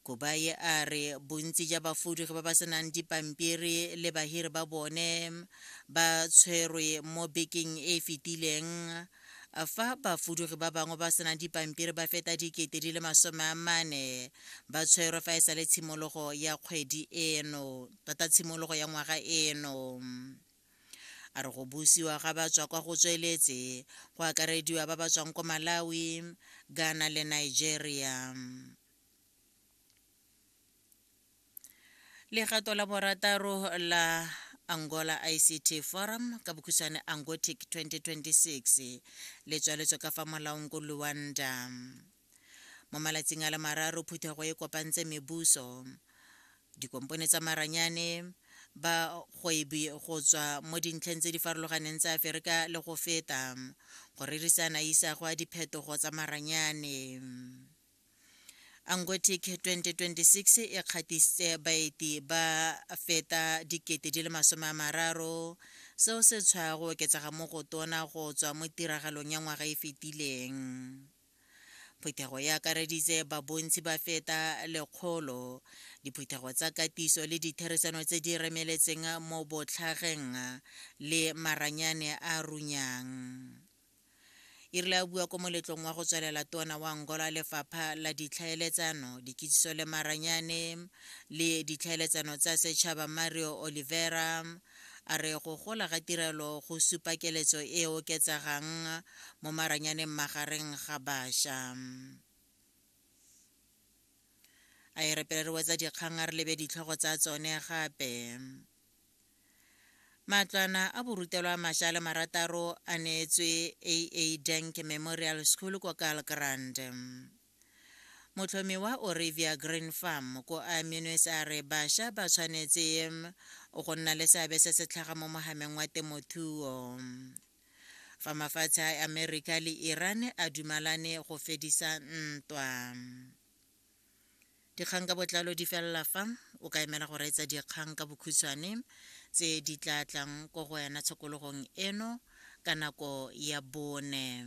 Kubayi a re bontsi ja bafudugi ba ba senang dipampiri le bahiri ba bone ba tshwerwe mo bekeng e e fetileng fa bafudugi ba bangwe ba senang dipampiri ba feta dikete di le masome a mane ba tshwerwe fa e sa le tshimologo ya kgwedi eno tota tshimologo ya ngwaga eno a re go busiwa ga ba tswa kwa go tsweletse go akarediwa ba ba tswang ko malawi ghana le nigeria legato la borataro la angola ict forum ka bokhutshwane angotic 2026 le tswaletswe ka fa molaong ko luanda mo malatsing a le mararo phuthego e kopantse mebuso dikompone tsa maranyane ba kgwebi go tswa mo dintlheng tse di farologaneng tsa aferika le go feta go rerisana isago a diphetogo tsa maranyane angotic 2026 e kgatiste baeti ba feta dikete di le masome a mararo seo se tshwa go oketsega mo go tona go tswa mo tiragalong ya ngwaga e fetileng Phuthego e akareditse babontsi ba feta lekgolo, diphuthego tsa katiso le ditherisano tse di remeletseng mo botlhageng le maranyane a runyang. E rile a bua ko moletlong wa go tswelela tona wa Angola lefapha la ditlhaeletsano, dikitsiso le maranyane le ditlhaeletsano tsa setšhaba Mario Oliveira, A re go gola ga tirelo go supa keletso e e oketsegang mo maranyaneng magareng ga baša. A e re pele re wetsa dikgang a re lebe ditlhogo tsa tsone gape. Matlwana a borutelwa a maša a le marataro a neetswe AA Dank Memorial School kwa Kaalkrand. Motlhomi wa Orevia Green Farm ko Aminwes a re basha ba tshwanetse go nna le seabe se se tlhaga mo mogameng wa temothuo. Fa mafatshe a America le Iran a dumalane go fedisa ntwa. Dikgang ka botlalo di felela fa o ka emela go reetsa dikgang ka bokhutshwane tse di tla tlang ko go wena tshokologong eno ka nako ya bone.